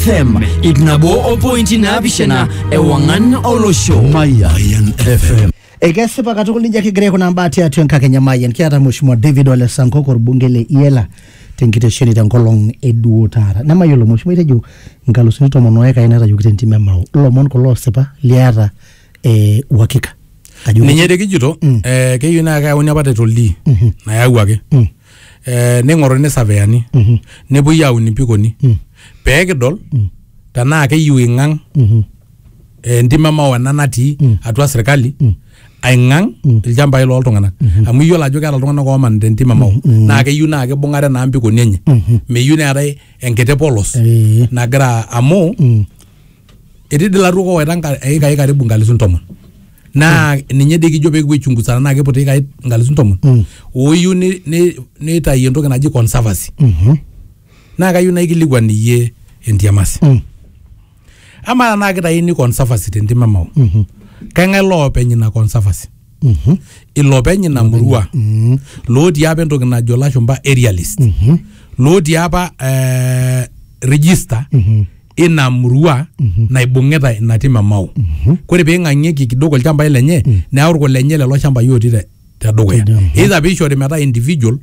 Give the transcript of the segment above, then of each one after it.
fm ip nabo opointi naapishana ewang'an olosho Mayan FM. ekesipa katukul nijo kigira aikunaa mbaa tiatua enkakenya mayian kiata mheshimiwa david ole sankok orbunge le iela tenkitesheni tenkolong eduo taata nemayiolo mheshimiwa itejo nkalusuni tomon oekai naitayioki tentim emau ilomon kulo osipa liata eh, uhakika ajo ninye tekijito eh, keyieu naa keyauni apa title D nayawuaki eh, ning'oruni saveyani Mhm. nepuoi aun impikoni Mm. pee kidol Mm. tenaa keyiu ing'ang Mhm. eh, entim emao ena natii Mm. atua sirkali Mm. aing'ang Mm. ilchambai loltung'anak amu iyiolo ajo keeta iltung'anak oomanita entim emao Mm. naa keyieu naa kibung'are naa mpikoni enye Mhm. meyieu neetae enkiti polos Eh. nagira amu Mm. etii dii laruok owaita nka- eikai karibu nkalisu ntomon naa ninye dii kijo pekipuo aichunguza tenaa kiput eikai nkalisu ntomon Mm. oyieu ni- ni- nitayu entoki naji conservancy Mhm. naa kayieu naikilikuan iyie entiamasi Mm. amaa tenaa kitayuni conservancy tentim emao Mhm. keng'ae loopeny ina conservancy Mhm. ilopeny ina murua Mhm. lootii apa entoki najo lashumba aerialist Mhm. lootii apa eh, register Mhm. ina murua naibung'ita ina tim e Mau. Kore peing'ang'ieki kidogo ilchambai lenye neyau irkulenye lelo shambai otii te tedukuya. Either peishori metaa individual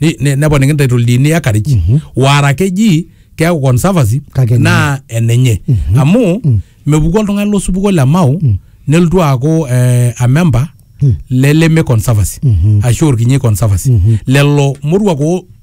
ni- ne- neponiki title deed-ni acreage wara keji keaku conservancy Kake enenye. naa enenye. Amu mepuku oltung'ani losupuko le Mau nelotu aaku eh, a member le Leme conservancy ashu Orkinyi conservancy. Lelo moruak oo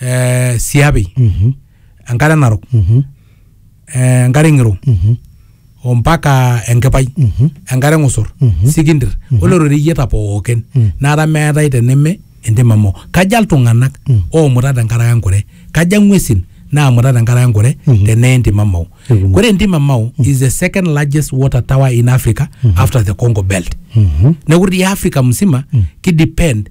eh, siapi Mhm. enkare narok Mhm. eh, enkare ng'iro Mhm. ompaka enkipai Mhm. enkare ng'usur Mhm. sikindir ore roreyieta pookin Mm. nara meetae teneme entim amu kaja iltung'anak Mm. oomuta tenkaraki enkure kaja ng'uesin naamuta tenkaraki enkure Mhm. tenee entim amau Ekumok. ore entim amau is the second largest water tower in africa after the congo belt Mhm. neeku ti africa msima kidepend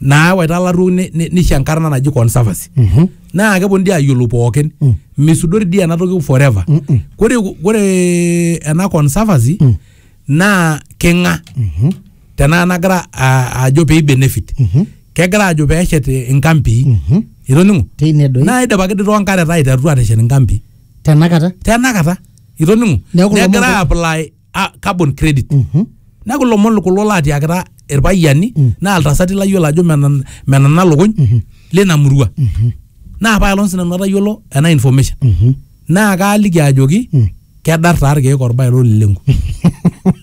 naawaita ilarruok ni- ni- nisho enkarna naji conservancy Mhm. naa keponu dii ayiolou pookin Mm. misudori dii ena toki forever Mm-mm. kore kore ena conservancy Mm. naa king'a Mhm. tenaa nagira a- ajo pee benefit Mhm. kegira ajo pee eshet inkampii Mhm. itoning'o teine doi naa idipaki dii toonkareta aiterutua aateshet inkampii tenakata tenakata itoning'o Neeku lomon negira ko- apply ah, carbon credit neeku lomon kulo laatiakita irpayiani naa iltasati layiolo ajo menan- menana lukuny lina murua naa apaelong sinanu atayiolo ena information naa kaaliki ajoki kedar taa irkeek orbae lolilengu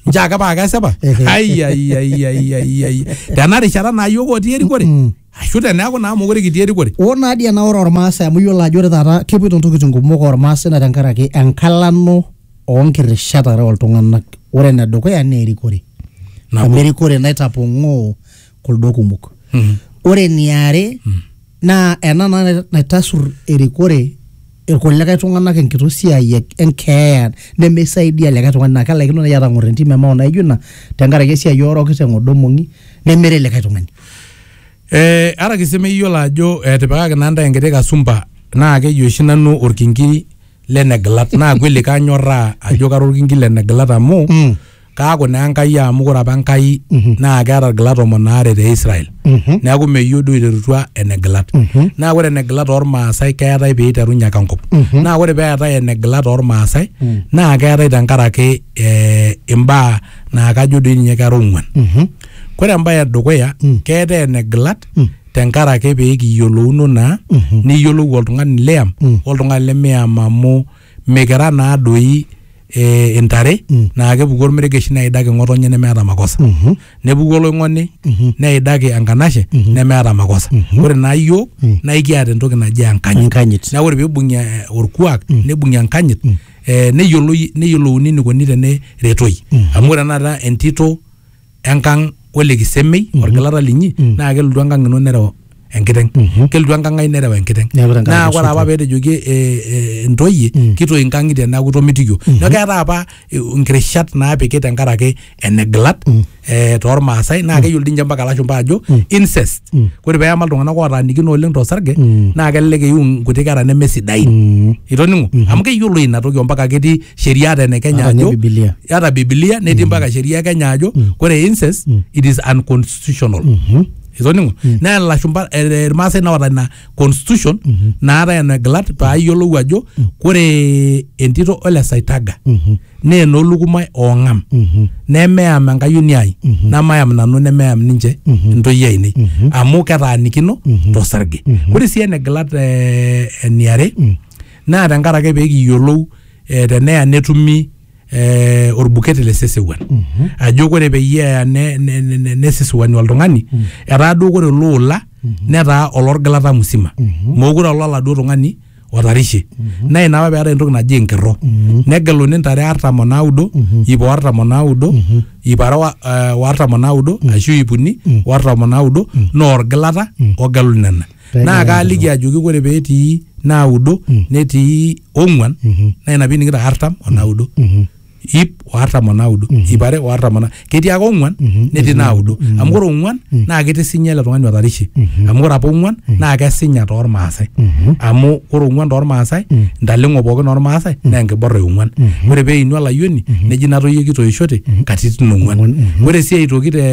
nche ake paa kesipa Ehe. Ai, ai, ai, ai, ai, ai. tena rishata naa yiok otii erikore ashu teneeku naa mokure kitii erikore. Oo naa dii ena ore Ormaasai amu iyiolo ajo ore taata kepoito ntokitin kumok Ormaasai naa tenkaraki enkalano oo nkirishat are oo ltung'anak. Ore ene dukuya naa erikore Nabo. amu erikore naitapong'oo kuldo kumok. Ore eniare naa ena naa naitasur erikore irkulikae tung'anak enkitoo siai e- enkeeya nemeisaidia likae tung'ani naa kelaikino naaji atang'or entim emao naijo ina tenkaraki esiai ooroki teng'odo mong'i nemeret likae tung'ani Eh, ara ake sii meyiolo ajo etipikaki naa ntae enkiti kasumba naa keji oshi nanu orkinki le negilat naa kweli kanyorraa ajo kara orkinki le negilat amu Mm. kaaku naa Enkai amu kore apa Enkai mhm. naa keata ilgilat tomon aare te Israel mhm. neaku meyieu duo eiterutua enegilat mhm. naa ore enegilat ormaasai keetae pee eiterunye ake enkop naa ore pee eetae enegilat ormaasai mm. naa keetae tenkaraki eh, imbaa naa kajo doi ninye kera ong'uan kore embaye edukuya mm. keetae enegilat mm. tenkaraki pee kiyiolouno naa niyiolou oltung'ani liyam oltung'ani lemiyam amu mikira naa doi eh, intare naa kepuku ormeregesh neidaki ng'otonye nemeeta makosa nepuku oloing'oni neidaki enkanashe nemeeta makosa ore naa iyiok naa ikiata entoki naji enkanyit Enkanyit. neeku ore peibung'i eh, orkuak neibung'i enkanyit eh, neyioloi neyiolouni enikoni teneretoi amu ore tenakata entito enkang ole kisemei orgilata linyi naa kelotu enkang ino nereu enkiteng kelotu enkang ai nereu enkiteng Neeku tenkaraki naa ore osotua. apa peetejoki eh, eh, ntoyie kitoi inkang'itie neeku itomitikio neeku keetae apa eh, nkirishat naapiki tenkaraki enegilat eh, tormaasai naa keyiolo dii ninche mpaka ilashumpa ajo incest ore peema iltung'anak ootaanikino oleng tosarge naa kelelek eiu nkuti kera nemesidain itoning'o amu keyiolo ina toki ompaka ketii sheria ata ene kenya Ata ninye ajo Biblia. ata bibilia netii mpaka sheria e kenya ajo kore incest it is unconstitutional itoning'o naa lashumpa eh, irmaasai naota ina constitution naata ena glat paa iyiolou ajo kore entito ole saitaga naa enolukumai oong'am nemeyam enkayioni ai namayam nanu nemeyam ninche ntoyie ainei amu ketaanikino tosarge kore sii ene glat eh, eniare naa tenkaraki ake pee kiyiolou eh, teneya netumi eh, orbukete le sesewuan ajo kore peyie eya ne- ne- ne- ne- nesesewuani oltung'ani etaa duo kore ele ola netaa olorgilata musima mookure olo oladuo tung'ani otarishe naa ina apa peetai entoki naji enkerro negeluni ntare artam onaudo iip o artam onaudo iip are wa- eh, o artam onaudo ashu iip uni o artam onaudo naa orgilata ogelu nena Pee naa egira kaaliki ajoki ore petii naudo Mm. netii ong'uan Mhm. naa ina piining'ito artam o naudo Mhm. ip o artam o naudo Mhm. ip are o artam o na ketii ake ong'uan Mhm. netii Netii naudo naudo. Mhm. amu ore ong'uan Mm. naa kitisinya ele tung'ani otarishe Mhm. amu ore apa ong'uan naa kesinya toormaasai Mhm. amu ore ong'uan toormaasai Mm. ntaleng'o pookin ormaasai naa enkiborra e ong'uan Mhm. ore peinu olayioni neji natoyie kitoishote katitin ong'uan Ong'uan, mhm. ore sii aitoki te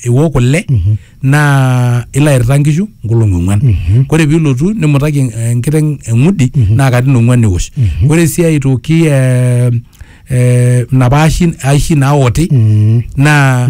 iwok kule Mhm. naa ilo airita nkishu nkolong'i ong'uan mm-hmm. kore piilotu nimutaki enkiteng eng'udi mm-hmm. naa katin ong'uan eosh mm-hmm. kore sii aitoki eh, eh, napa aishi naoti naa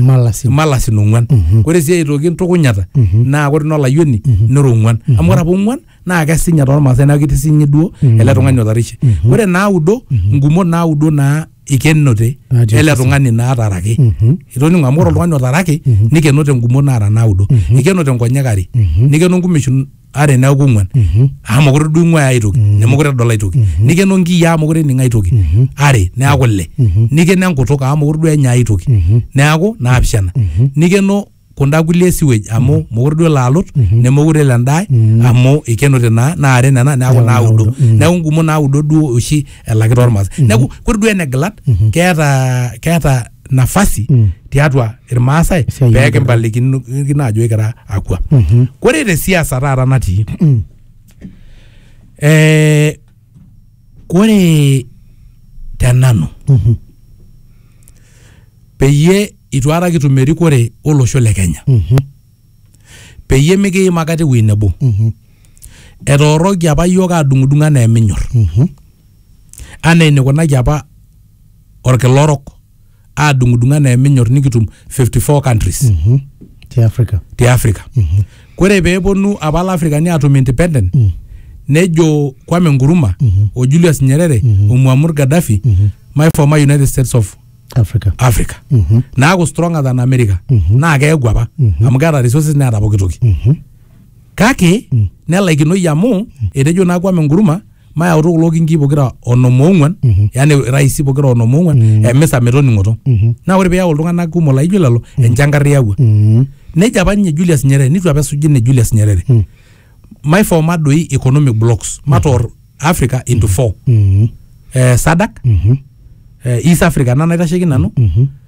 malasin ong'uan kore sii aitoki ntukunyata naa kore ina olayioni nera ong'uan amu kore apa ong'uan naa kesinya tormaasai neeku ketii sinye duo Mm. ele tung'ani otarishe Mhm. ore naudo Mhm. ngumot naudo naa ikenote Natii ele osesen. tung'ani naataraki Mhm. itoning'o amu ore oltung'ani otaraki Mhm. nikenote ngumot naara naudo Mhm. ikenote nkonyek are Mhm. nikeno nkumeshin are neeku ng'uan Mhm. amu mokure duo ing'uaya ai toki Mhm. nemokure edol ai toki Mhm. nikeno nkiyiaa mokure ening ai toki Mhm. are neeku ile Mhm. nikeno enkutuk amu mokure duo enya ai toki Mhm. neeku naapishana Mhm. nikeno kunda kulie sewage amu mm. mokure duo laalut mm -hmm. nemokure elo endae mm -hmm. amu ikenote naa naa are nena neaku yeah, naudo mm -hmm. neaku ngumo naudo duo oshi elaki tormas mm -hmm. neaku kore duo enegilat mm -hmm. keeta keeta nafasi mm -hmm. tiatua irmaasai pee kimpalikino ajo ikira akwa mm -hmm. kore te siasa taata natii mm -hmm. eh, Kore te nanu Mhm. peyie itu aikata kitum erikore olosho le Kenya Mhm. peyie mikiim aikata ewuei nebo. Mhm. Etooroki apa iyiook aadung'udung anaa eminyor Mhm. anaa enikunaki apa olkila orok. aadung'udung' anaa eminyor nikitum 54 countries Mhm. Ti Africa. te Africa. Kore pee eponu apa Lafrikani aatum independent nejo Kwame Nkuruma o Julius Nyerere o Muammar Gaddafi my former United States of Africa. Africa naaku stronger than America naa keaku apa amu keata resources neata pooki toki kake nelaikinoyu amu etejo naa Kwame Nkuruma mayautu kulo kinkii pokira onom oong'uan Mhm. yani raisi pokira onom oong'uan Mhm. emisa metoning'oto Mhm. naa ore piyau iltung'anak kumok laijo lelo enchankarr iyawua Mhm. neja apa ninye Julius Nyerere nitu apa esuji ne Julius Nyerere Mm. maiforma doi economic blocks matoor Africa into four Mhm. eh, SADC Mhm. eh, East Africa ena naitasheki nanu Mhm.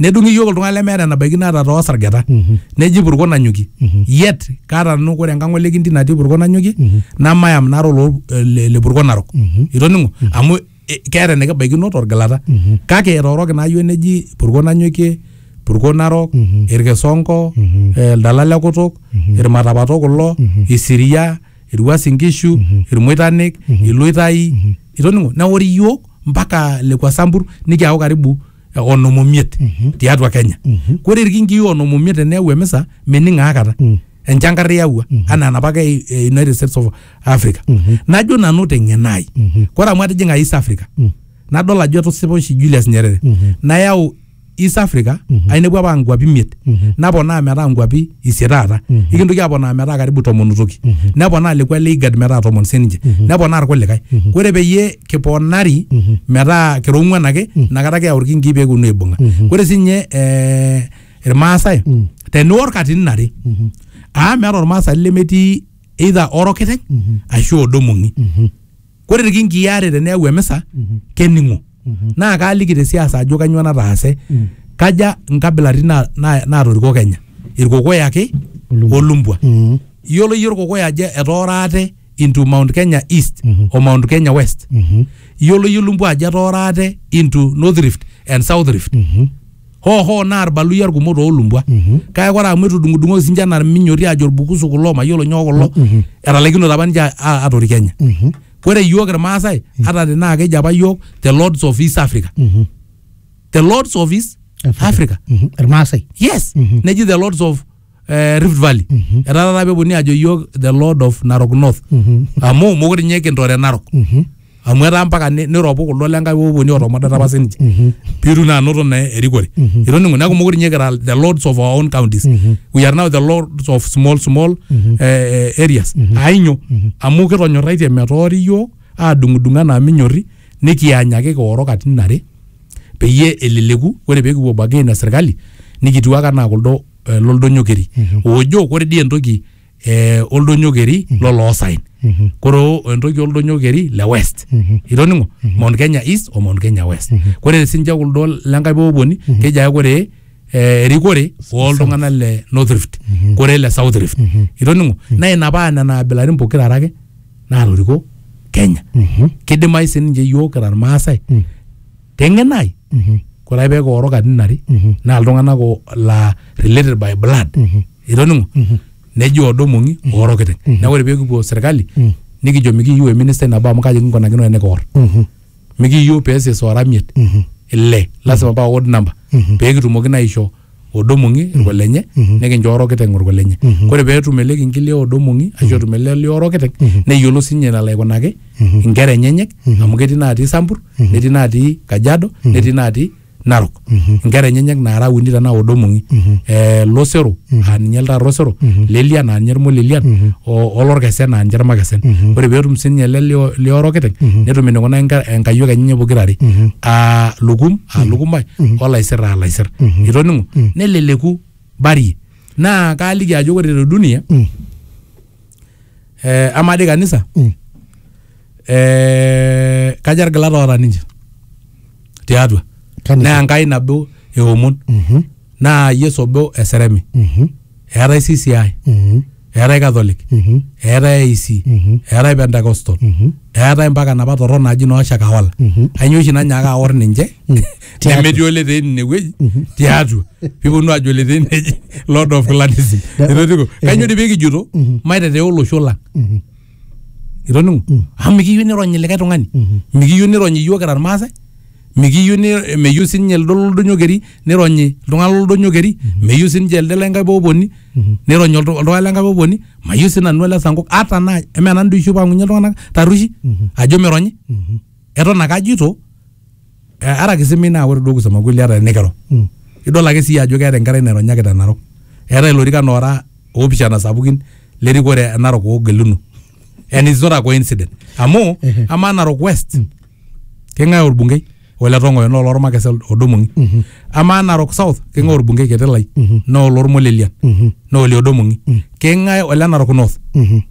nedung'i iyiook iltung'anak lemeeta enabaiki naata too sargeta neji purko nanyoki yet kaata nanu ore enkang ole kinti natii purko nanyoki namayam nara oloo le le purko narok itoning'o amu eh, keeta enikibaikino torgilata kake etooroki naa iyiook neji purko nanyokie purko narok irkisonko eh, ildala le kutuk irmatapato kulo isiria irwuas inkishu irmoitanik iloitai itoning'o neori iyiook mpaka lekua sambur nikiaku karibu eh, onom omiet tiatua kenya kore irkingii onom omiet teneyau emisa mening aakata enchankar iyawua anaa enapake e- e united states of africa najo nanu teng'eno ai kore amu atijing'a east africa nadol ajo etusipa oshi julius nyerere nayau east africa ainepu apa nkuapi imiet naponaa metaa nkuapi isie taata ikintoki aponaa metaa karibu tomon toki neponaa lekua le igad metaa tomon sininche neponaa irkulikae ore peyie kiponari metaa kira ong'uan ake inakata keyau irkinkii pekiponu aibung'a ore sinye eh, irmaasai teniwor katitin are amu meeta ormaasani lemetii either orokiteng ashu odo mong'i kore irkinkii aare teneyau emisa kening'o naa kaaliki te siasa ajo kanyoo nataase kaja nkabilaritin na- na- naatoriko Kenya irkokoyo ake olumbwa Mm. iyiolo iyie irkokoyo ajo etoora ate into Mount Kenya East o Mount Kenya West Mhm. iyiolo iyie olumbwa ajo etoora ate into North Rift and South Rift Mhm. hoo hoo naa irbaluyia irkumok toolumbwa kake ore amu etudung'udung'oki sinche anaa irminyoti aajo irbukusu kulo mayiolo nyoo kulo etalaikinote apa ninche a- atoriki Kenya ore iyiook irmaasai ata tenaa keji apa iyiook the lords of east africa the lords of east africa irmaasai yes neji the lords of eh, Rift Valley etaa taata peponunui ajo yiok the lord of Narok North amu mokure ninye kintore Narok amu etaa mpaka ni- niropu kuldo lenkai oponi otomodata apa sininche pitu naa anoto naa erikore itoning'o neeku mokure ninye kira the lords of our own counties we are now the lords of small small eh, eh, areas ainyo amu kitonyorraitie metoori yiok adung'udung anaa minyorri nikianyaki kioro katitin are peyie eleleku ore pekipuo bargain na serkali nikitiwaka naa kuldo eh, loldonyo keri ojo kore dii entoki eh, oldonyo keri loloosaen kore o- entoki oldonyo keri le west itoning'o mount kenya east o mount kenya west kore sinche kuldo lenkae poponi keji ake kore eh, erikore oltung'anak le north rift kore le south rift itoning'o naa ina paa nena abilaritin pokira are ake naatoriko kenya kidimayu sininche yiok kira irmaasai te ng'eno ai Mhm. kore ake peeku ooro katitin are Mhm. naa iltung'anak o- laa related by blood Mhm. itoning'o Mhm. neji oodo mong'i ooro kiteng Mhm. neeku ore peekipuo serkali Mhm. nikijo mikiyieu eministai nabo amu kaji kinkunakino enikior Mhm. mikiyieu peeses oora miet Mhm. ile lasima paa odd number Mhm. peekitumoki naa aisho odo mong'i mm-hmm. irkolenye mm-hmm. nikincho orokiteng orkolenye mm-hmm. kore peetum ele kinkili odo mong'i ashu etum ele li orokiteng neyiolo sinye nalo aikunaki inkera enyenyek amu ketii natii sampur netii natii kajado netii natii narok inkera enyenyek naara uni tanaa odo mong'i eh, losero aa ninye ltaata osero lelian aa ninye irmolelian olorkesen aa ninche irmakesen ore peetum sinye ele li orokiteng netum enikunaa enkayiok enyenye pokirare aa lukum aa lukumbai olaisir aa laisir itoning'o neleleku barie naa kaaliki ajo ore te dunia eh, amaa dii kanisa eh, kaja irgilat oota ninche tiatua Kanisa. naa enkai nabo eomon naa yesu obo eseremi eetae CCI, eetae Catholic, eetae AIC, eetae Pentecostal, eetae mpaka napa torrok naaji noo Shakahola. Ainyoo oshi nanyaaka aor ninche Tiatua. nemetii oletee ine wueji tiatua piponu aajo oletee neji Lord of Clanism. Etotiko. Kainyoo dii pikijoto maitetea olosho lang. itoning'o Mm. amu mikiyieu nironyi likae tung'ani Mhm. mikiyieu nironyi iyiok kira irmaasai mikiyieu ni- meyieu sininye lido loldonyo keri nironyi iltung'anak loldonyo keri meyieu sininche elde lenkae poponi Mhm. nironyi oltu- oltung'ani lenkae poponi mayieu sinanu ele sankok ata naa eme nanu doi oshi opang'unye iltung'anak tarrueshi Mhm. ajo mironyi Mhm. eton ake ajito eh, ara kisimei naa ore duo kusema kweli ata enikiro Mm. idol ake sii ajo keeta enkerai naironyaki te narok eetae ilorikan oora oopishana sapukin lerikore e narok oogeluno and it's not a coincident amu Ehe. amaa narok west keng'ae orbungei ole tong'oyo naa olormakese odomong'i amaa narok south keng'ae orbungei ketelai naa olormolelian Mhm. naa ole odomong'i keng'ae ole narok north Mhm.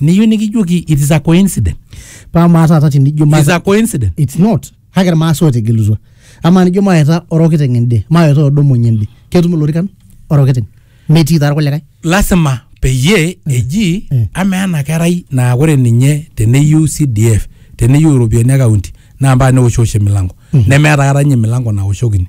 Niyieu nikijoki it is a coincidence. Paa amaa taata tenijo It is a coincidence. it's not kake irmaasai ootegelutua amaa nijo maeta orokiteng ende maeta odomony ende ketum ilorikan orokiteng metii taa irkulikae Lasima peyie eji Mm. amaa ena kerai naa ore ninye teneyieu CDF teneyieu iropiyiani e kaunti naa mpaka neoshiosh emilango. Nemeeta kata ninye emilango naoshokini.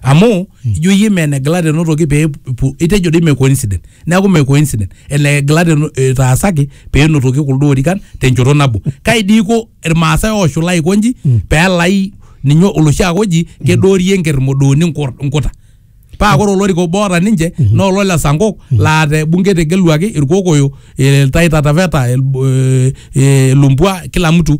amu ijo iyie mee neglect enotoki pee epu- itejo doi mee coincident neeku mee coincident eneglect eno- etaasaki pee enotoki kuldo orikan tenchoto nabo kai dii iko irmaasai ooshula aiko nji peelai ninye oloshi ake oji kedoorie enkerr modooni nkur- nkuta paa ore olorika obo oota ninche naa olo le sankok laa te bunge etegeluaki irkokoyo iltai tataveta el- eh, eh, lumbwa kila mtu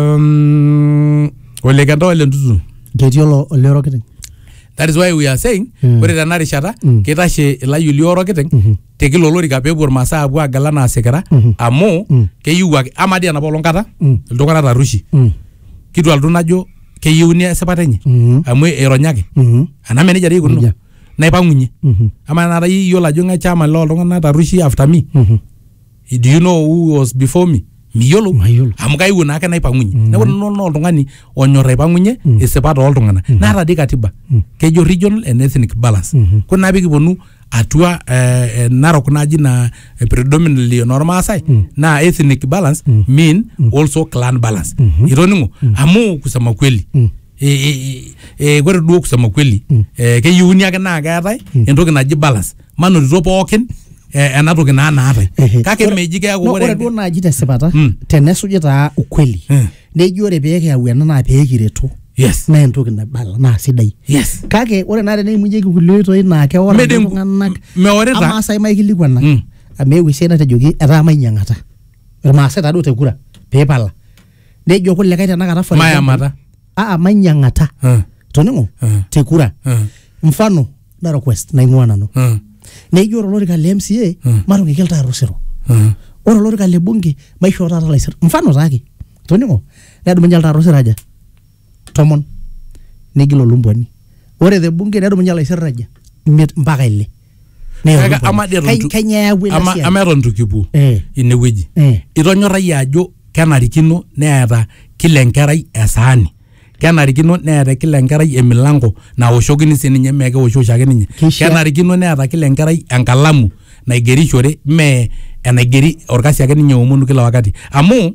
um, ole kenta ole ntutu ketii olo ole orokiteng that is why we are saying Mm. ore tena rishata Mm. kitashe ilayioli orokiteng Mhm. te kila olorika peepuo irmasaa apuo agala naa sikira Mhm. amu Mm. keyieu ake ama dii enapa olong kata Mm. iltung'anak tarushi Mm, kitua iltung'anak najo keyieuni esipata enye mhm, amu ironyaki mhm, anaa menejia dei ikununo Nejia. naipang'unye mhm, ama enata iyiolo ajo ng'ae chama loo iltung'anak tarushi after me mhm. do you know who was before me miyiolo Mayiolo. amu kaiwuo naa ake naipang'unye Mm. neeku nanu naa oltung'ani onyor aipang'unye Mm. isipa tooltung'ana Mm. naata dii katiba Mm. kejo regional and ethnic balance Mhm. kore naa pikiponu atua eh, eh, narok naji na eh, predominantly enormaasai Mm. naa ethnic balance Mm. mean also clan balance Mhm. itoning'o amu kusema kweli Mm. eh, eh, eh, kore duo kusema kweli Mm. eh, keyieuni ake naa keetae Mm. entoki naji balance manotito pookin eh, ena toki naa naatae Ehe. kake Ore- meji keeku No, ore ore duo naaji tesipata Mm. tenesuji taa ukweli Mm. neji ore pee kiyau ena naa pee kiretu yes naa entoki naibala naa sidai yes kake ore naa teneimunyeki kulie oitoi naa keora Mede- iltung'anak meorita. amaa sai maikilikuana Mm. amu eewuo esiai natejoki etaa mainyiang'ata irmaasai taduo te kura peepala nejo kulikae tenakata for example, Mayamata. aa mainyiang'ata Mm. toning'o Mm. te kura Mm. mfano na request naing'ua nanu Mm. neijo ore olorika le mca Mm. matung'iki iltaar osero Mm. ore olorika le bunge maishoo taata laisir mfano taake toning'o nedumunye iltaar osero aja tomon negil olumbuani ore te bunge nedumunye laisir aja imiet mpaka ile Neyau Kake ama dii eton Kai- itu- kainyoo eyawua ina ama siai? ama eton itu kipuo Eh. inewueji Eh. itonyorrayie ajo kenarikino neeta kila enkerai esaani kenarikino neeta kila enkerai emilango naoshokini sininye mee keosho oshiake ninye Keishaa- kenarikino neeta kila enkerai enkalamu naigerishore mee enaigeri orkasi ake ninye omonu kila wakati amu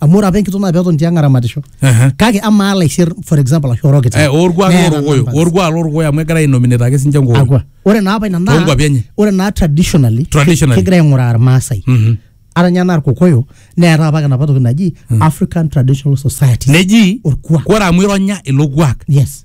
amu ore apa enkitok naa peton tiang aramatisho Ehe. kake amaa laisir for example ashu orokita Eh, orkuak Neeta lorkokoyo numbers. orkuak lorkokoyo amu egira ainominate ake sinche nkokoyo Akwa. ore naa apa ina naa Toonkuapi enye. ore naa traditionally Traditionally. kegira aing'uraa irmaasai Mhm. ata ninye anaa irkokoyo neeta apa enapa toki naji african traditional society neji orkuak ore amu ironya ilo kuak yes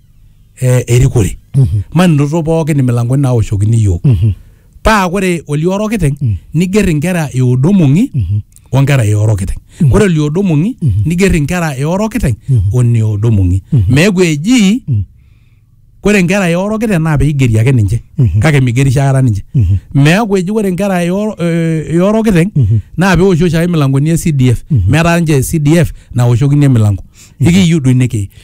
eh, erikore maninoto pookin imilangoni naoshokini iyiook paa kore olioro kiteng niger inkera e odomong'i onkera e oro kiteng kore oliodomong'i niger inkera e oro kiteng one odomong'i meeku eji kore inkera e oro kiteng naa peigeri ake ninche kake migerisho aikata ninche meeku eji kore inkera e oro- eh, e oro kiteng naa peoshi oshiake imilangoni e CDF metaa ninche CDF naoshokini emilango ikiyiu duo ine kei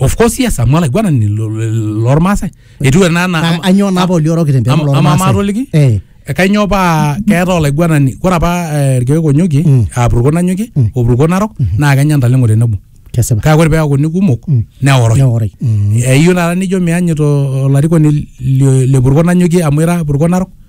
of course yes amu olaiguanani lo- lo- lormaasai etiu ena Na- anaa anyoo naa poli orokito empeku ama- ama- ama atoliki? Eh, kainyoo paa keeta olaiguanani ore apa eh, irkeek onyokie Mm. apurko nanyokie Mm. opurko narok naa kenya ntaleng'o tenebo kesipa kake ore peakuni kumok Mm. neoroi neoroi Mm. eyieu taata nijo mianyito olarikoni le- le purko nanyokie amu ira purko narok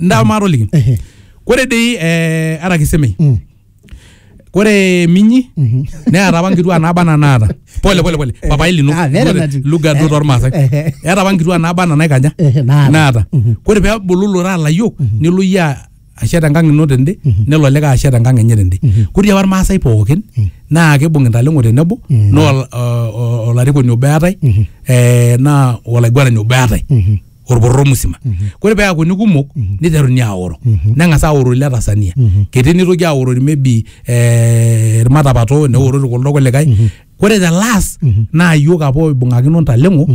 ndaa maatoliki Ehe. kore dei eh, ara kisemei Mm. kore minyi neata apa nkituaa naaba ana naata pole pole pole papai lino Ah, very Lugha- nice. lugha duo tormaasai Ehe. eata apa nkituaa naaba ana naikaja Ehe, naata. naata kore peebulu lora layiok nelo iyie a- ashet enkang ino tende nelo olikae ashet enkang enye tende kore dei apa irmaasai pookin naa keibung intaleng'o tenebo naa ol- o- o- olarikoni obo eatae eh, naa olaiguanani obo eatae olpororo musima kore peakuni kumok niteruni aoro neng'as aoro ile Tanzania ketii nitoki aorori maybe eh, ilmatapato neorori kuldo kulikae kore the last naa iyiok apa oibung'akino ntaleng'o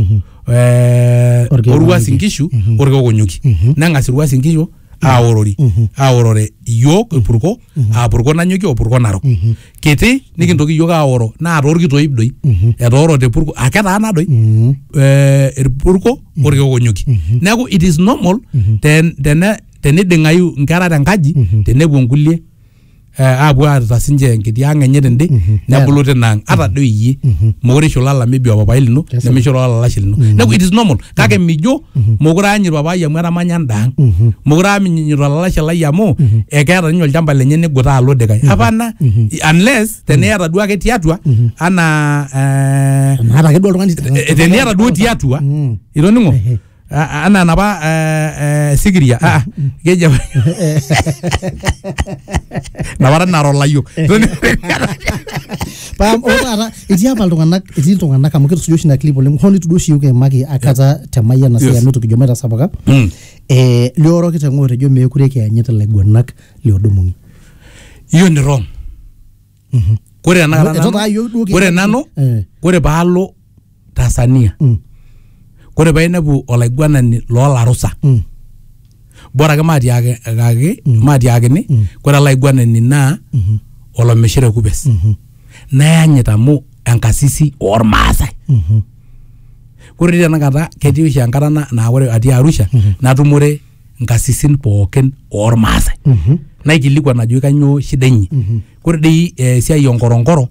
eh, Orkeek Orwuas Onyuki. Inkishu Orkeek Onyuki neng'as Irwuas Inkishu aorori aorore iyiook irpurko aa purko nanyokie o purko narok kiti nikintoki iyiook aoro naa toorkitoip doi etoorote purko aa ketaana doi eh, irpurko orkeek onyokie neeku it is normal ten- tene- teniding'ayu inkera tenkaji tenepuo nkulie eh, apuo aata sinche enkiti ang enye tende nebulu tina ang ata doi iyie mokure isho olala maybe opapai lino Kesipa. nemisho olala olashe lino neku it is normal kake mijo mokure aanyit papai amu etamanya enda ang mokure aanyit olalashe lai amu ekeeta ninye olchamba lenye nigutaa alo dikae apana unless teniata duo ake tiatua anaa eh, Maata ake duo oltung'ani. eh, teniata duo tiatua Mm. itoning'o Ehe. Ah, ah, anaa enapa eh, eh, sikiria ah, ah, keji apa napara nara olayiok paa ore taata etii apa iltung'anak etii iltung'anak amu kitusuja oshi ina clip oleng hoo nitu duo oshi yiok kiimaki akata te mayiana Yes. yes. amu itu kijo maitasapuka Mm. eh, lioroki teng'oto ejo meekure kiyanyit ilaiguanak liodumuni hiyo ni wrong Mhm. kore tanakata Etu taa yiok duo nanu- kore kiata- nanu Eh. kore paalo Tanzania Mm. kore painepu olaiguanani lolarusa Mm. bora ake matiakaki matiakini kore ele aiguanani naa olomishira kupes Mhm. nayanyit amu enkasisi ormaasai Mhm. kore dei tanakata ketii oshi enkata na- naa ore atii arusha natumore nkasisin pookin oormaasai naikilikuan ajoki kanyoo shida inyi kore dei eh, esiai onkoronkoro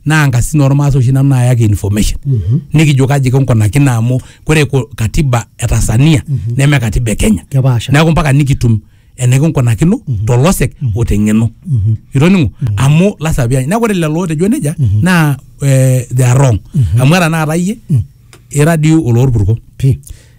naa nkasisin oormaasai oshi nanu naayaki information nikijo kaji kinkunakino amu kore ko- katiba e Tanzania neme katiba e Kenya Kepaasha. neeku mpaka nikitum enikinkunakino tolosek o teng'eno itoning'o amu lasima piany neeku ore lelo ootejo nejia naa eh, they are wrong amu era tenakata iyie ira dii oloorpurko Pi.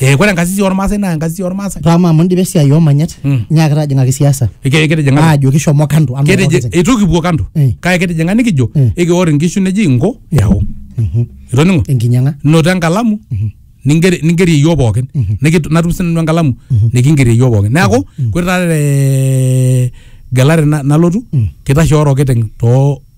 Eh, kore enkasisi ormaasai naa enkasisi ormaasai Rama amu indipa esiai oomanyat Mm. nyaaki tajing'aki siasa Eke- kitijing'a aajo kishomo kando amu Kitiji- orkiti. eitu kipuo kando Eh. kake kitijing'a nikijo Eh. ekior inkishu neji inko yau Mhm. itoning'o enkinyang'a noto enkalamu ningeri ningerie yioo pookin Nikit- natum sinanu enkalamu nikingerie yioo pookin neeku kore taata te gelare na- nalotu kitashe orokiteng too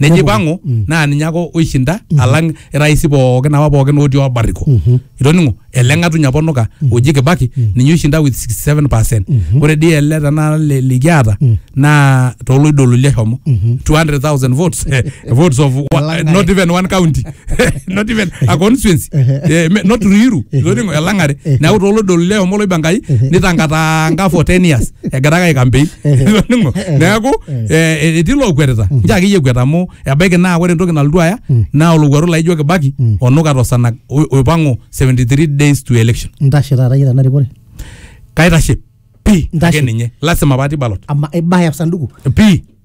Nejo Nepuku. ipang'u Mm. naa ninye ake oishinda alang iraisi pookin apa pookin otii obariko. Mhm. Itoning'o ele ng'atuny apa onuka oji Kibaki ninye oishinda with 67%. Mhm. Ore dii ele tenakata li- likiata Mm. naa toloidololi eshomo Mhm. 200,000 votes eh, votes of wa- Elang'are. not even one county not even a constituency Ehe. Eh, me- not Ruiru Ehe. itoning'o elang'are Ehe. neeku toloidololi eshomo oloibankai Ehe. nitankataanka for 10 years egira ake aikampei Itoning'o? neeku eh, etii lookwetita nche akeyie ekwet amu ebaiki naa ore entoki nalotu aya naa olowuaru laijo kibaki onuka tosanag o- oipang'u 73 days to election ntashe taata yie tena rikore kaitashe pii Ntashe. ake ninye lasima patii balot ama ibaya sanduku pii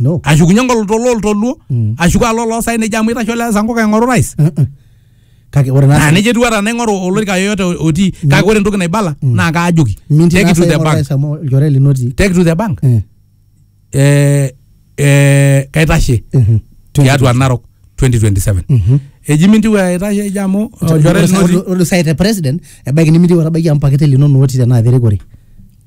no ashukunye ngoloto loltoluo Mm. ashuku alo loosaen nejo amu itasho le sankuka aing'oru rais Eh, eh. kake ore naa naa nejo etiu ata naing'oru olorika yoyote otii kake ore entoki naibala naa kaajoki minti take it to the bank nasa amu olchore lino otii take it to the bank Eh, eh, eh, kaitashe mhm. tiatua narok 2027 Mhm. eji mintiwe aitashe eji amu olchore Ore- lino otii ore- ore sai te president ebaiki nimintieu etabaiki amu pakete linono otii tenaa terikore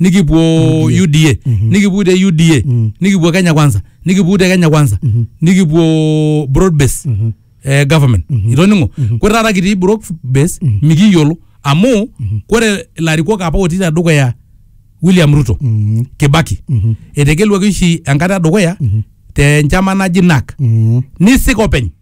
nikipuo UDA. UDA Mhm. nikipuo te UDA Mhm. nikipuo Kenya Kwanza nikipuo te Kenya Kwanza Mhm. nikipuo broad base Mhm. eh, government Mhm. itoning'o Mhm. kore taata kitii broad base Mhm. mikiyiolo amu Mhm. kore ilarikok apa otii tedukuya William Ruto Mhm. Kibaki Mhm. etegeluaki oshi enkata edukuya Mhm. te nchama naji NAK Mhm. nisik openy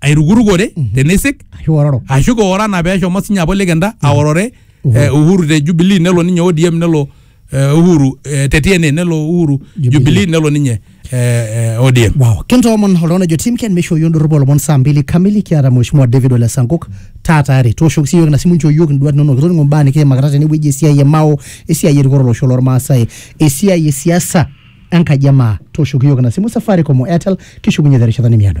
airukurukore teneisik ashu ororo ashu keora na peshomo sinye apa olekenda aorore eh, uhuru te jubilee nelo ninye odm nelo eh, uhuru eh, te tna nelo uhuru jubilee nelo ninye eh, eh, odm wow kintoomon oltung'ani ojo tim ken meishooyo ndorropu olomon saa mbili kamili kiata mheshimiwa david ole sankok taa tayari tooshoki siiyiook ina simu nchoo iyiook induat inonok kitoning'o mbaa nikiimakita tenewueji esiai e mao esiai erikore olosho lormaasai esiai e siasa enkaji e maa tooshoki iyiook ina simu safaricom o airtel kishukunye terishata nemiado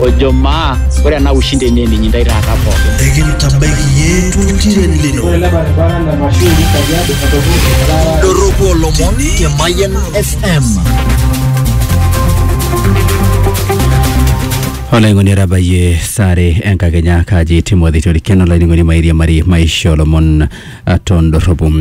ojo maa ore ena ushindi enye ninyi ndai taata pookin ekintabaiki iyie toltiren lino doropu olomon te mayian fm olaing'oni etabayie sare enkakenya kaji timothy torikeno olaining'oni mairiamari maisha olomon tondorropu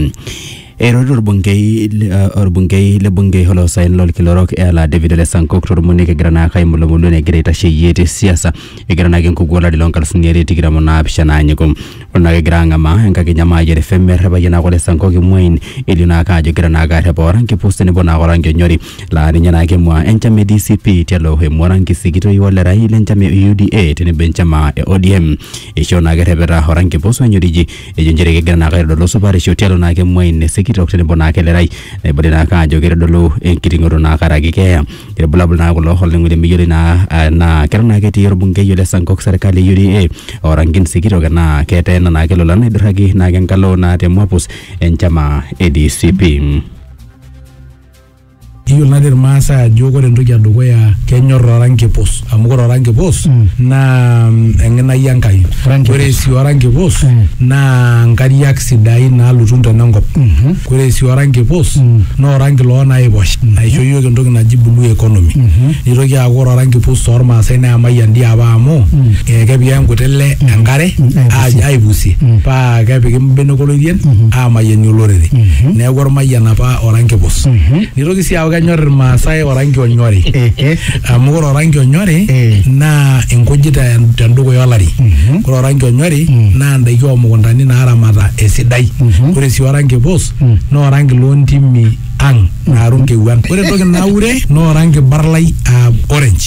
Eirorie orbungei le- eh, orbungei le bunge oloosaen lolkila orok Ela David Ole Sankok tormonek egira naa kaimulumulu enegira aitasheyie te siasa egira naake enkuku olari loo nkalifuni are tikitam o naapishana anyiku. Ore naake egira ang'amaa enkakenya Maayiare FM errepaye naake Ole Sankok imuain elio naake ajo egira naake arrep oranki pus tenebo naake oranki onyori laa ninye naake emua enchama e DCP tialo emua oranki sikitoi olerai le nchama e UDA tenebo enchama e ODM. Eishoo naake errepeta oranki pus onyoriji ejo nchere kegira naake aitodolu supatisho tialo naake emuai nesikitok tenebo naake elerai naibali naake ajo keitodolu enkiting'oto naa karaki keeya ilbulabul naa kulo olning'o lemeyioloi naa ah, naa keton naake etii orbungei ole sankok serkali e UDA orankin sikitok enaa keteena naake lolan naidurraki naake enkalo naa te mwapus enchama e DCP. Iyiolo natii irmaasai ajo ore entoki edukuya kenyor oranki pus amu ore oranki pus mm. naa mm, eng'inai Enkai. Ore sii oranki pus mm. naa nkariak sidain naalutu ntona enkop. Mm-hmm. Ore sii oranki pus mm. naa oranki loo naiposh mm-hmm. naisho iyiook entoki naji blue economy. Mm-hmm. Nitoki aaku ore oranki pus tormaasai naa emayian dii apa amu eh, kepiki enkuti le enkare aipusie paa kepiki mbenek olorien aamayianie olorere. Neeku ormayian apa oranki pus. Nitoki sii aaku kenyor Irmaasai oranki onyori. Ehe. Amu ore oranki onyori Eh. naa inkujit te- tendukuya olari. Ore oranki onyori naa indaiki oomukuntani naaramata esidai. Ore sii oranki pus naa oranki loontimi ang' naaru nkewuan. Ore entoki naure naa oranki barlai aa orange.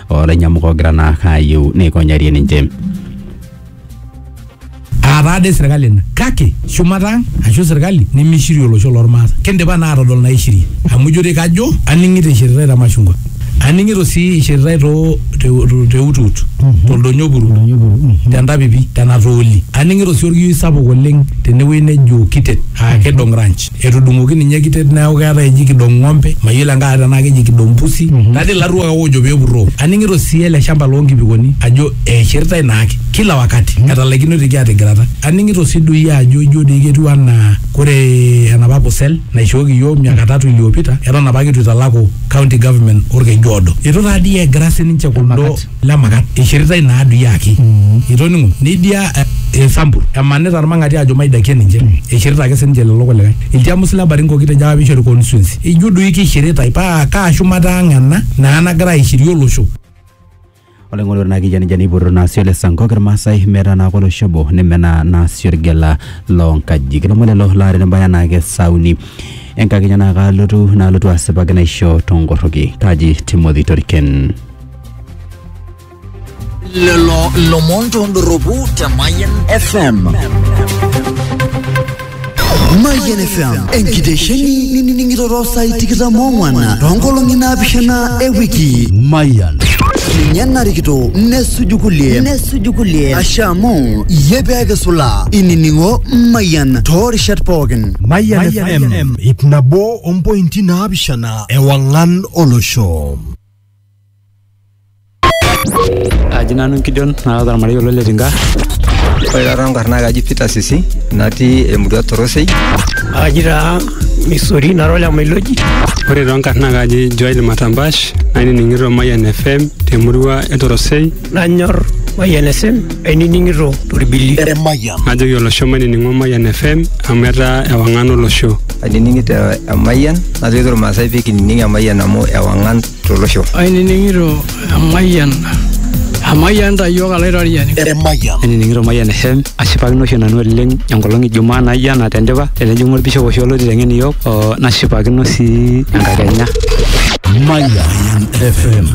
olainyamuk ogira naa ayieu neikonyarie ninche. Aataa dei serkali ina kake shumata ang ashu serkali nemeishirie olosho lormaasai. Kindipa naa aatodol naishirie amu ijo dei kajo aning'ito eishiritae te mashungwa. Aning'ito sii eishiritae too te utut to ldonyo puru te ntapipi te natooli. Aning'ito sii olkiyioi sapuk oleng tenewueji nejo kitet aa kidong ranch. Etudung'oki ninye kitet neaku keetae eji kidong ng'ombe, mayiolo enkae tenaa keji kidong pusi, natii ilarruok ake oojo pee epurroo. Aning'ito sii ele shamba loo nkipikoni ajo eishirtae naake kila wakati, etalaikinoitie aatigirata. Aning'ito sii doi ajo ijo doi ketiu anaa kore enapa pusel naishooki iyiook miaka tatu iliyopita eton apake eitu eitalaku County Government Olkejuodo. Eitu taa dii egira sininche kuldo lemakat eishiritae ina adui aki itoning'o neidia eh, esampul emanita irmang'ati ajo maidakie ninche eishirita ake sininche lelo kulikae ilchamus le Baringo kitejo apa peishori constituency ijo doi keishiritae paa kaa shumata ang ena naa nagira aishirie olosho oleng'olore naa kijani jani ipoto naasio le sankok irmaasai metaa naa kolosho obo nemenaa naasio irgela loonkajijik ilomon lelo laata nebaya naa kesauni enkakenya naa kaalotu naalotu asipaki naisho tongorroki kaji timothy toriken lelo lomon tondoropu te Mayan FM. Mayian FM enkitesheni ninining'ito saai tikitam ong'wan toonkolong'i naapishana e wiki Mayian ninye narikito nesuju kulie nesuju kulie ashe amu iyie pee kisula inining'o Mayian toorishat pookin Mayian FM ip nabo ompointi naapishana ewang'an olosho Aji nanu Gideon naata ormarei olo le Tinga. Ore taata enkarna ai kaji Peter Sisi natii emurua Torosei. Aji taa Misori nara ole Mailoji. Ore too nkarna ai kaji Joel Matambash nainining'ito Mayian FM temurua e Torosei. Nanyor Mayian FM ainining'ito torbili. Najoki olosho mainining'o Mayian FM amu etaa ewang'an olosho. ainining'ito emayian najoki irmaasai pee kinining emayian amu ewang'an tolosho ainining'ito emayian emayian tayiok alaitoriani Emayian. ainining'ito mayian eshem ashipakino oshi nanu oleng enkolong ijumaa naijo ena tendipa tenejing'u orbishop oshi olotii teng'en iyiook oo nashipakino sii enkakenya Mayian FM.